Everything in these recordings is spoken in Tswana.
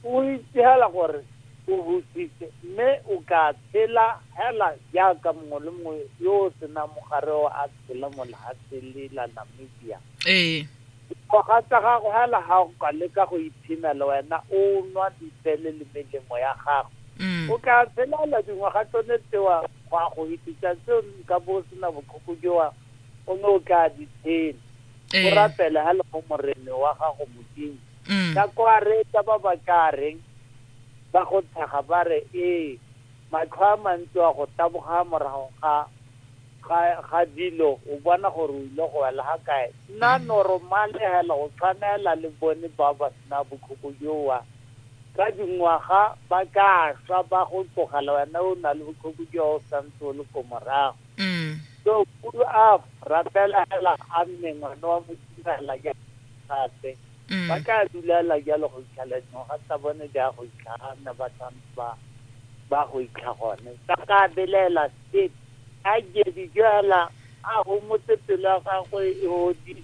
O itse hela gore o busitse mme o ka tshela hela jaaka mongwe le mongwe yo o senang mogare o a tshela mo lehatsheng le la Namibia. Ee. Dikgoga tsa gago hela ga o ka leka go iphina le wena o nwa dipele le melemo ya gago. Mm. O ka tshela hela dingwaga tsone tsewa go a go hitisa tseo nka bo o sena bokhoko jowa o ne o tla di tshela. O rapele hela mo morene wa gago Modimo. Mm. ka kwa reetsa ba ba ka reng ba go tshega ba re ee matlho a mantsi wa go taboga morago ga ga ga dilo o bona gore o ile go wela ga kae nna Mm. normale hela go tshwanela le bone ba ba sena bokhoko jowa ka dingwaga ba ka swa ba go tlogela wena o na le bokhoko jowa o santse o le ko morago Mm. so kudu a rapela hela a mme ngwana wa mo direla gape mm. ba tla dulela jalo go itlhala dingwaga tsa bone di a go itlhaga nne ba tshwanetse ba ba go itlha gone ba ka belaela state a jedi jala a gomotse pelo ya gagwe e odile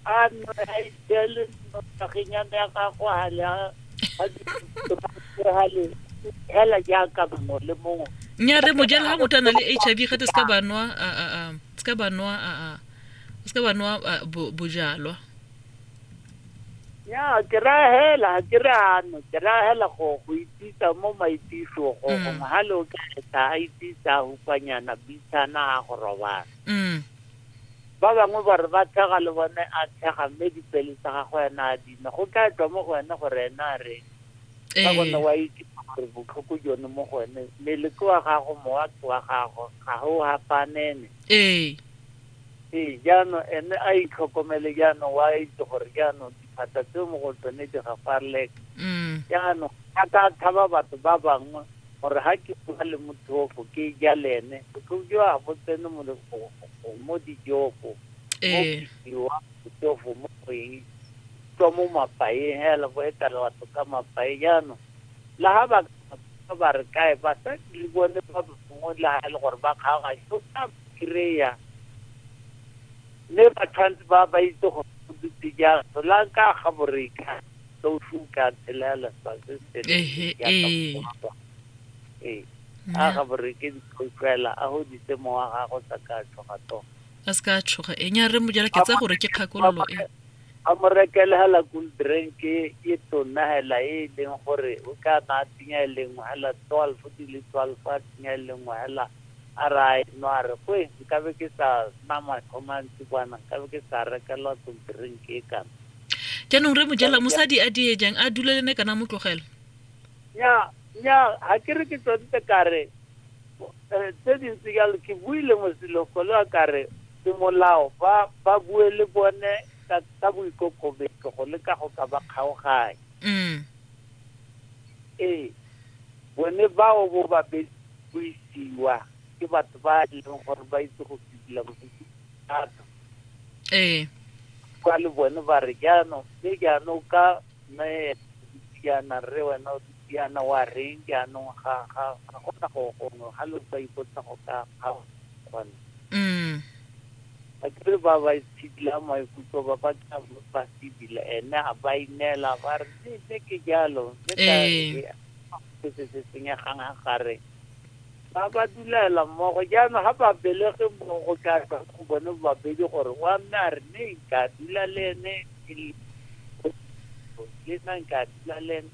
a nwe a itele notageng ya me ya gagwe a le a le hela jaaka mongwe le mongwe nya re mojele ga motho a na le h i v gate se ka banwa se ka banwa a o se wa nwa ah, bojalwa ya ke ra hela ga ke re ano ke ra hela go go itsisa mo maitiso go mm. gongwe ga le o ka etsa a itsisa a hukwanyana bitshana a go robala mm. ba bangwe ba re ba thega le bone a thega mme dipele tsa gago ena a dina go tla tswa mo go ene gore ena a reng ka ee. gone wa itisa gore botlhoko jone mo go ene mmele ke wa gago mowa ke wa gago ga go gapanene ee. Ee, jaanong ene a itlhokomele jaanong wa itse gore jaanong diphata tseo mo go tsone di gafarleka mm. jaanong a ka tshaba batho ba bangwe gore ga ke bua le mothofo ke ja le ene botlhoko jo a bo tsene mo dijofo mo biwa ee. mothofo mo go eng tswa mo mapaeng hela bo etela batho ka mapae jaanong la ga ba ba re kae basadi le bone ba bangwe le ga e le gore ba kgaoganye kry-a. Mme ba tshwanetse ba ba itse go dutse jang solanka ga boreka so su ka tshelela sa se se Ehe, ee. ee a ga boreke dikhotlwela a go ditse mo wa gago sa ka tshoga to a se ka a tshoga e nya re mojela ke tsa gore ke kgakololo e a mo rekele hela cool drink e e tona hela e e leng gore o ka na a tsenya e lengwe hela twelve di le twelve a tsenya e lengwe hela A re a enwa a re, Kwe, nkabe ke sa nna matlho mantsi kwana, nkabe ke sa rekelwa tlontirenke e kana. Jaanong re mojela, mosadi a die jang, a dule le ne kana mo tlogela? Nnyaa, nnyaa, ga ke re ke tsoditse ka re eh, tse dintsi jalo, ke buile mosilo golo a ka re semolao ba ba bue le bone ka, ka boikokobetso go leka go ka ba kgaoganya. Mm. Ee, bone bao bo babedi go isiwa ke batho ba e leng gore ba itse go fidila bodutu thata ee kwa le bone ba re jaanong mme jaanong ka mme diana re wena o diana wa reng jaanong ga ga ga gona go gongwe ga lo ba ipotsa go ka ga gone mm ba kere ba ba itshidila maikutlo ba ba tla ba fidila ene a ba ineela ba re mme ke jalo mme ka se se se senyegang a gare ba ba dulela mmogo jaanong ga ba belege mmogo go tla tswa go bone babedi gore wa mme a re ne nka dula le ene ke le le nna nka dula le ene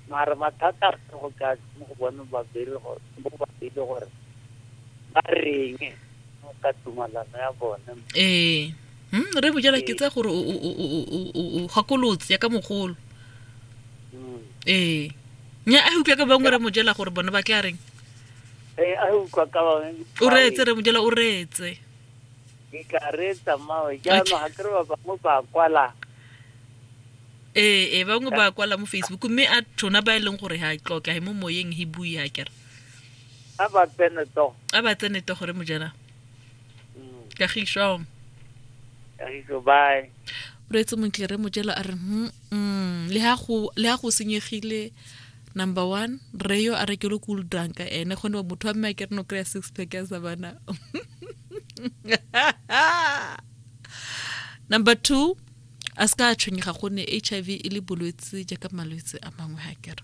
mare mathata a go tla tswa mo go bone babedi gore mo babedi gore ba reng ka tumalano ya bone ee Hmm, re bojela ke tsa gore o gakolotse ya ka mogolo hmm. ee nya a utlwa ka bangwe re mojela gore bone ba tla reng ee a utlwa ka bangwe o reetse re mojela o reetse ke tla reetsa mmawe jaanong ga kere ba bangwe ba kwala ee ee bangwe ba kwala mo facebook mme a tona ba e leng gore ga tloke ga e mo moyeng he bue a kere a ba tsene togo a ba tsene togo re mojela Mm. kagišo kagišo bye o reetse montle re mojelo a re mm, mm, le ga go senyegile number one re yo a rekelo cool drunka ene kgone ba motho wa mme a ke re no kry-a six pack ya sa bana number two a se ka a tshwenyega gonne h i v e le bolwetse jaaka malwetse a mangwe ga kere